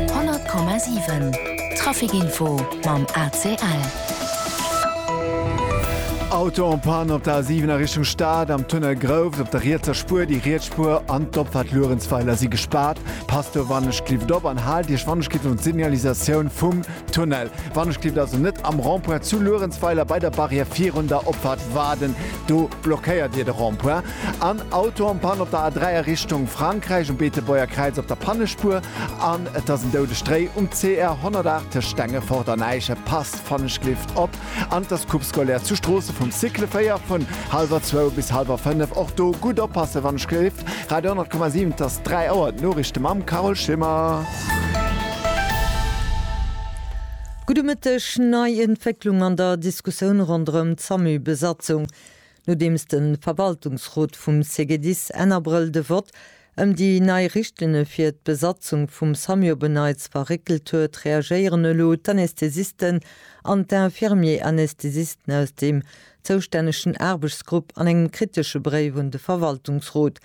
100,7 Trafic Info mam ACL. Auto en Panne op der A7 a Richtung Stad, am Tunnel Grouft. Op der rietser Spuer, déi riets Spuer an d'Opfahrt Luerenzweiler si gespaart. Passt do wannechgelift op an haalt Iech wannechgelift un d'Signalisatioun vum Tunnel. Wannechgelift also net am Rond-point zu Luerenzweiler bei der Barrière virun der Opfahrt waarden, do blockéiert Dir de Rond-point. En Auto en Panne op der A3 a Richtung Frankräich, um Beetebuerger Kräiz op der Pannespuer, an et ass en doude Stréi um CR 108 tëscht Stengefort an Äische, passt Fannechklift op, an et ass Coupe scolaire zu Stroossen vum Cycle 4 vun hallwer zwou bis hallwer fënnef. Och do gutt oppassen, Fannechklift, Radio 100,7, et ass 3 Auer, d'Noriichte mam Carole Schimmer. Gudde Mëtteg, Nei Entwécklung an der Diskussioun ronderëm d'Samu-Besatzung. Nodeems de Verwaltungsrot vum CGDIS Enn Abrëll de Vott ëm déi nei Richtlinne fir d'Besatzung vum Samuo Beneits verréckelt huet, reagéieren elo d'Anästhesisten an d'Infirmier-Anästhesisten aus deem zoustännegen Aarbechtsgrupp an engem kritesche Bréif un de Verwaltungsrot.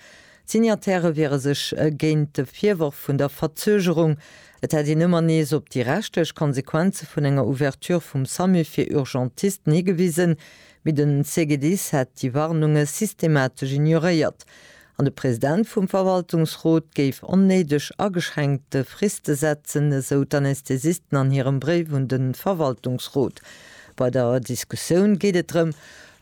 D'Signataire wiere sech géint de Virworf vun der Verzögerung, et hätt een ëmmer nees op déi rechtlech Konsequenze vun enger Ouverture vum Samu fir Urgentisten higewisen, Mee den CGDIS hätt déi Warnunge systematesch ignoréiert an de President vum Verwaltungsrot géif onnéideg ageschränkte Friste setzen, esou d'Anästhesisten an hirem Bréif un de Verwaltungsrot. Bei der Diskussioun geet et drëm,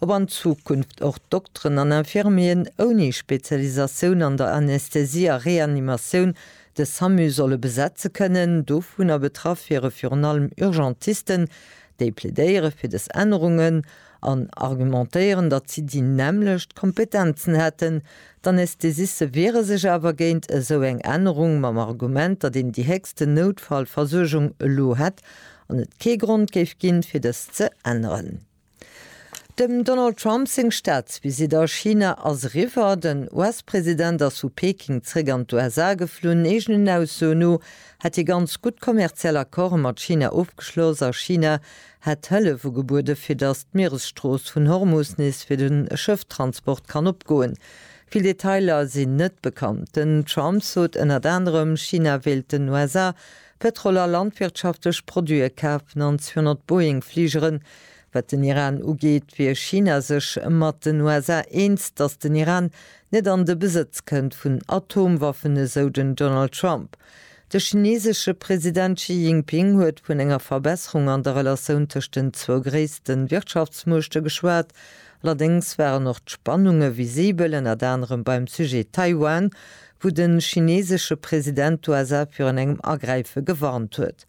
ob an Zukunft och Dokteren an Infirmieren ouni Spezialisatioun an der Anästhesie a Reanimatioun de Samu solle besetze kënnen. Dovunner betraff wiere virun allem Urgentisten, Déi plädéiere fir dës Ännerungen an argumentéieren, datt si déi nämmlecht Kompetenzen hätten. D'Anästhesiste wiere sech awer géint esou eng Ännerung, mam Argument, datt een déi héchsten Noutfallversuergung elo hätt an et kee Grond géif ginn, fir dëst ze änneren. Dem Donald Trump seng Staatsvisitt a China ass eriwwer. Den US-President ass vu Peking zeréck an d'USA geflunn. Eegenen Aussoen no hätt hie ganz gutt kommerziell Accorde mat China ofgeschloss a China hätt Hëllef ugebuede fir datt d'Mieresstrooss vun Hormus nees fir de Schëfftransport kann opgoen. Vill Detailer sinn net bekannt. Den Trump sot ënnert anerem, China wéilt den USA Pëtrol a landwirtschaftlech Produite kafen an 200 Boeing-Fligeren Wat den Iran ugeet, wier China sech mat den USA eens, datt den Iran net an de Besëtz kënnt vun Atomwaffen, esou den Donald Trump. De chinesesche President Xi Jinping huet vun enger Verbesserung an der Relatioun tëscht den zwou gréisste Wirtschaftsmuechte geschwat. Allerdéngs waren och d'Spannunge visibel, ënnert anerem beim Sujet Taiwan, wou de chinesesche President d'USA virun engem Agräife gewarnt huet.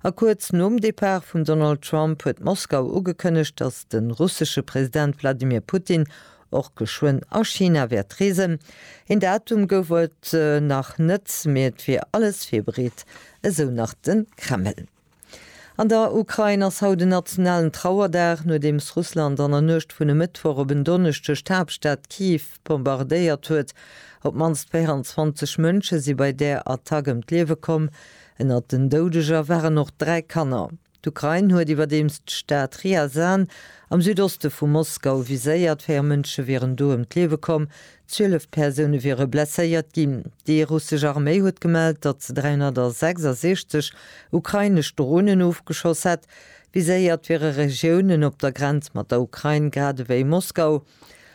A kuerz nom Depart vum Donald Trump huet Moskau ugekënnegt, datt de russesche President Wladimir Putin och geschwënn a China wäert reesen. Een Datum gouf et nach net, mee et wier alles virbereet, esou nach de Kreml. An der Ukrain ass haut en nationalen Trauerdag, nodeems Russland an der Nuecht vun e Mëttwoch op en Donneschdeg d'Haaptstad Kiew bombardéiert huet. Op d'mannst 24 Mënsche si bei där Attack ëm d'Liewe komm. Ënnert den Doudeger waren och dräi Kanner. D'Ukrain huet iwwerdeems d'Stad Ryazan am Südoste vu Moskau viséiert. Véier Mënsche wieren do ëm d'Liewe komm, zwielef Persoune wiere blesséiert ginn. Déi russesch Arméi huet gemellt, datt se 366 ukrainesch Dronen ofgeschoss hätt. Viséiert wiere Regiounen op der Grenz mat der Ukrain, grad ewéi Moskau.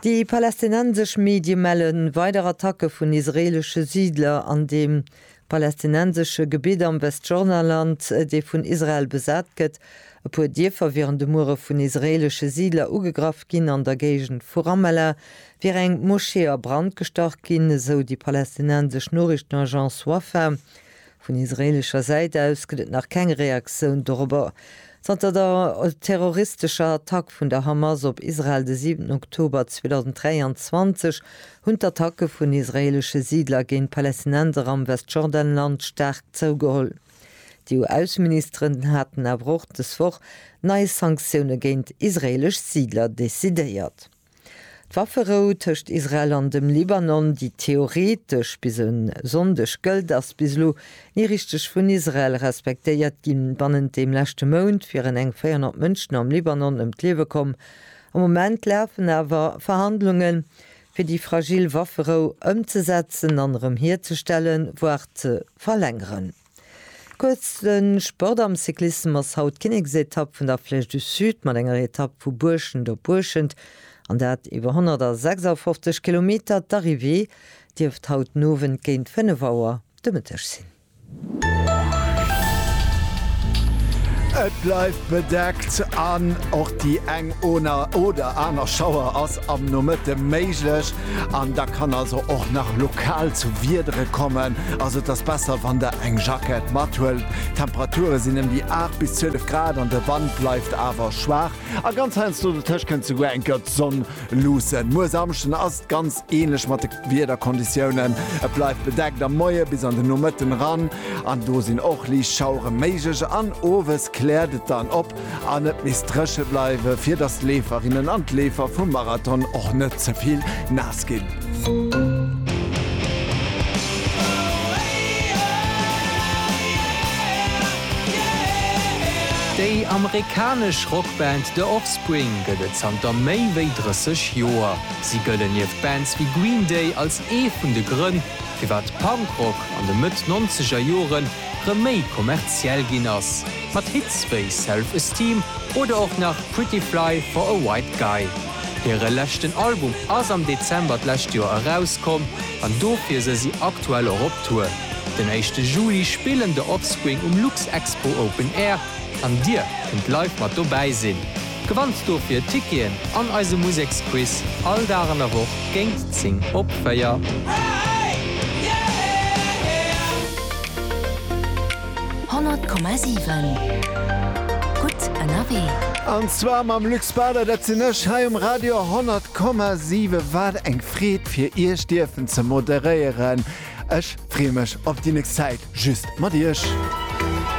Déi palästinensesch Medie melle weider Attacke vun israeelesche Siidler an deem palästinensesche Gebitt am Westjordanland, dee vun Israel besat gëtt. E puer Dierfer wieren de Muere vun israeelesche Siidler ugegraff ginn. An der Géigend vu Ramallah wier eng Moschee a Brand gestach ginn, esou déi palästinensesch Noriichtenagence Wafa. Vun israeelescher Säit aus gëtt et nach keng Reaktioun dorobber. Zanter der terroristescher Attack vun der Hamas op Israel de 7 Oktober 2023 hunn d'Attacke vun israeelesche Siidler géint Palästinenser am Westjordanland staark zougeholl. D'EU-Ausseministeren haten awer och dës Woch nei Sanktioune géint israeelesch Siidler decidéiert. D'Wafferou tëscht Israel an dem Libanon, déi theoretesch bis e Sonndeg gëllt, ass bis elo ni richteg vun Israel respektéiert ginn. Bannent deem leschte Mount wieren eng 400 Mënschen am Libanon ëm d'Liewe komm. Am Moment lafen awer Verhandlungen, fir déi fragil Wafferou ëmzesetzen an erëm hierzestellen, voire ze verlängeren. Kuerz, De Sport am Cyclissem ass haut d'Kinneksetapp vun der Flèche du Sud mat enger Etapp vu Buerschent op Buerschent, an dat iwwer 156 Kilometer. D'Arrivée dierft haut den Owend géint 5 Auer de Mëtteg sinn. Et bleift bedeckt an och déi eng oder aner Schauer ass am Nomëtte méiglech. An da kann also och nach lokal zu Wiedere kommen. Also et ass besser, wann der eng Jackett mathuelt. D'Temperature sinn ëm déi 8 bis 12 Grad an de Wand bleift awer schwaach. A ganz heiansdo dotëscht kënnt souguer eng gëtt Sonn luussen. Muer Samschden ass et ganz änlech mat de Wiederkonditiounen. Et bleift bedeckt am Moie bis an de Nomëtten eran. An do sinn och liicht Schauere méiglech an owes kläert et dann op. an et misst dréche bleiwen, fir datt d'Leeferinnen an d'Leefer vum Marathon och net ze vill naass ginn. Déi amerikanesch Rockband The Offspring gëtt et zanter méi wéi 30 Joer. Si gëllen nieft Bands wéi Green Day als ee vun de Grënn, firwat Punkrock an de Mëtt-Nonzegerjoren rëm méi kommerziell ginn ass, mat Hits wéi Self Esteem oder och nach Pretty Fly for a White Guy. Hire leschten Album ass am Dezember d'lescht Joer erauskomm an dofir se si aktuell och op Tour. Den éischte Juli spillen The Offspring um Luxexpo Open Air an dir kënnt live mat dobäi sinn. Gewannt dofir Ticketen an eise Museksquiz all Dag an der Woch géint 10 op 4. Honnert Komma siwen, gutt ënnerwee! An zwar mam Luc Spader, dat sinn ech, hei um Radio Honnert Komma siwe. Wat eng Freed fir Iech dierfen ze moderéieren. Ech freeë mech op déi nächst Zäit just mat Iech.